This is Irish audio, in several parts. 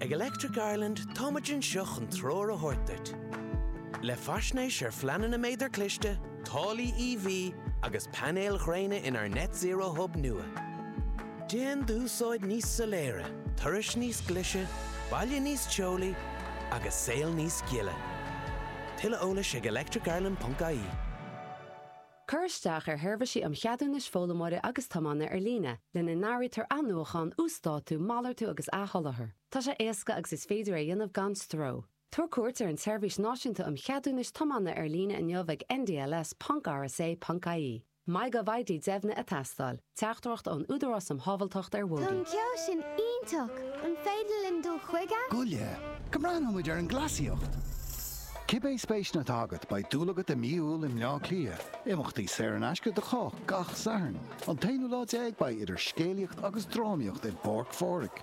Ag Electric Ireland táimid anseo chun treoir a thabhairt duit. Le faisnéis ar phleananna méadar cliste, táillí EV agus painéil ghréine inár Net Zero Hub nua. Déan d'úsáid níos soiléire, turais níos glise, baile níos teolaí agus saol níos gile. Tuilleadh eolais ag electricireland.ie. Cuir isteach ar sheirbhísí um cheadúnais foghlaimeora agus tiomána ar líne, lena n-áirítear athnuachan, uasdátú, malartú agus athsholáthar. Tá sé éasca agus is féidir é a dhéanamh gan stró. Tabhair cuairt ar an tSeirbhís Náisiúnta um Cheadúnais Tiomána ar Líne inniu ag ndls.rsa.ie. MyGovID deimhnithe ag teastáil. Teachtaireacht ón Údarás um Shábháilteacht ar Bhóithre. Tá an ceol sin iontach! An féidir linn dul chuige? Goile, go mbreathnóidh muid ar an gcleasaíocht! Cibé spéiseanna atá agat, beidh dúil agat i Mí Iúil i mBleá Cliath. Imeachtaí saor in aisce do chách gach Satharn. An t-aonú lá déag beidh idir scéalaíocht agus drámaíocht i bPáirc Phádraig.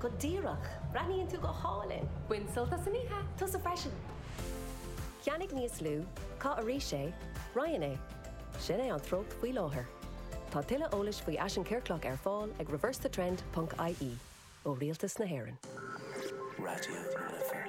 Go díreach! Breathnaíonn tú go hálainn! Bain sult as an oíche! Tusa freisin! Ceannaigh níos lú, caith arís é, Roinn é. Sin é an treocht faoi láthair. Tá tuilleadh eolais faoi fhaisean ciorclach ar fáil ag reversethetrend ponc ie, ó Rialtas na hÉireann. Raidió na Life.